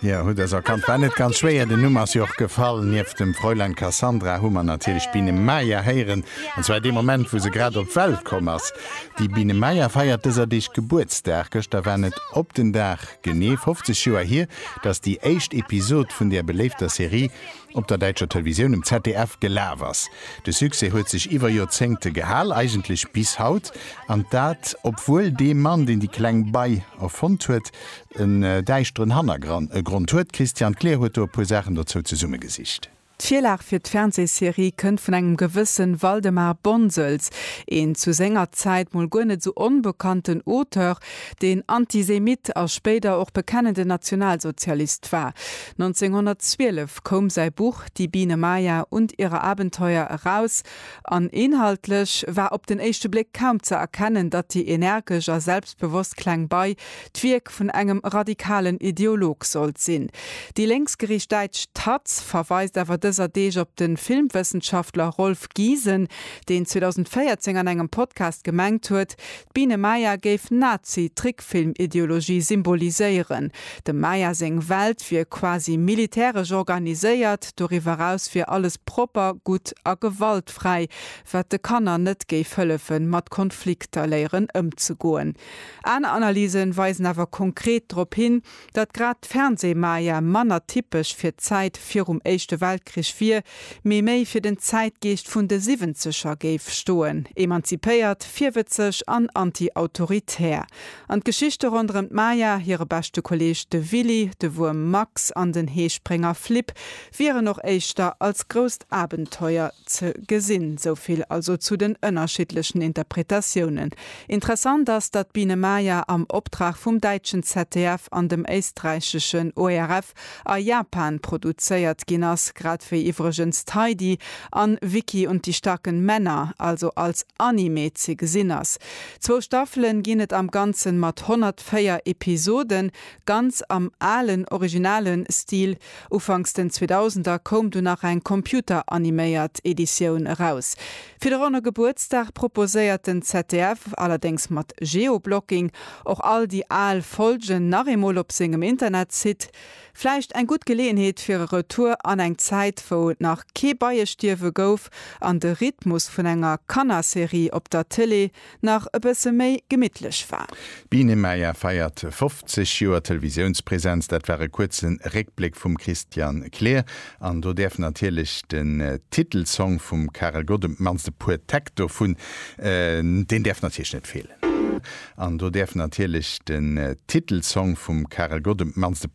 Jo, hutt dës erkannt. War net ganz schwéier, den Numm ass jo och gefall. Nieft dem Fräulein Cassandra hu mer natierlech d'Biene Maya héieren, an zwar dee Moment, wou se grad op d'Welt komm ass. Déi Biene Maya feiert dëser Deeg Gebuertsdag. Gëschter waren et op den Dag genee 50 Joer hier, datt déi éischt Episod vun där beléifter Serie op der däitscher Televisioun, um ZDF, gelaf ass. De Succès huet sech iwwer Joerzéngte gehal, eigentlech bis haut, an dat obwuel dee Mann, deen déi kleng Bei erfonnt huet, en däischteren Hannergrond huet. D'Christiane Kleer huet do e puer Saachen dozou zesummegesicht. D'Virlag fir d'Fernsehserie kënnt vun engem gewësse Waldemar Bonsels, een zu senger Zäit mol guer net esou onbekannten Auteur, deen Antisemitt a spéider och bekennenden Nationalsozialist war. 1912 koum säi Buch Die Biene Maya und ihre Abenteuer eraus. An inhaltlech war op den éischte Bléck kaum ze erkennen, datt déi energesch a selbstbewosst kleng Bei d'Wierk vun engem radikalen Ideolog sollt sinn. Déi lénksgeriicht däitsch taz verweist awer dëser Deeg op de Filmwëssenschaftler Rolf Giesen, deen 2014 an engem Podcast gemengt huet, D'Biene Maya géif Nazi-Trickfilm-Ideologie symboliséieren. Dem Maya seng Welt wier quasi militäresch organiséiert, doriwwer eraus wier alles propper, gutt a gewaltfräi, wat de Kanner net géif hëllefe mat Konflikter léieren ëmzegoen. Aner Analyse weisen awer konkret drop hin, Datt grad d'Fernsehmaja manner typesch fir d'Zäit virum Éischte Weltkrich wier, mee méi fir den Zäitgeescht vun de Siwwenzeger géif stoen, emanzipéiert, virwëtzeg an anti-autoritär. An d'Geschichte ronderëm d'Maja, hire beschte Kolleeg de Willy, de Wuerm Max an den Heesprénger Flip wieren och éischter als grousst Abenteuer ze gesinn. Sou vill also zu den ënnerschiddlechen Interpretatiounen. Interessant ass, datt d'Biene Maya am Optrag vum däitschen ZDF an dem éisträicheschen ORF a Japan produzéiert ginn ass, grad wéi iwwregens d'Heidi an Vicky und die starken Männer also als Anime ze gesinn ass. Zwou Staffelen ginn et am Ganzen mat 104 Episoden, ganz am alen, originalen Stil. Ufanks den 2000er koum du nach eng computeraniméiert Editioun eraus. Fir de ronne Gebuertsdag proposéiert den ZDF, allerdéngs mat Geoblocking, och all déi al Folgen nach eemol op sengem Internetsite. Vläicht eng gutt Geleeënheet fir e Retour an eng Zäit, wou et nach kee Beiestierwe gouf an de Rhythmus vun enger Kannerserie op der Tëlee nach e bësse méi gemittlech war. D'Biene Maya feiert 50 Joer Televisiounspresenz. Dat war e kuerze Réckbléck vum Christian Kleer. An do däerf natierlech den Titelsong vum Karel Gott, op d'mannst e puer Täkt dovun, deen däerf natierlech net feelen. An do däerf natierlech den Titelsong vum Karel Gott, op d'mannst e.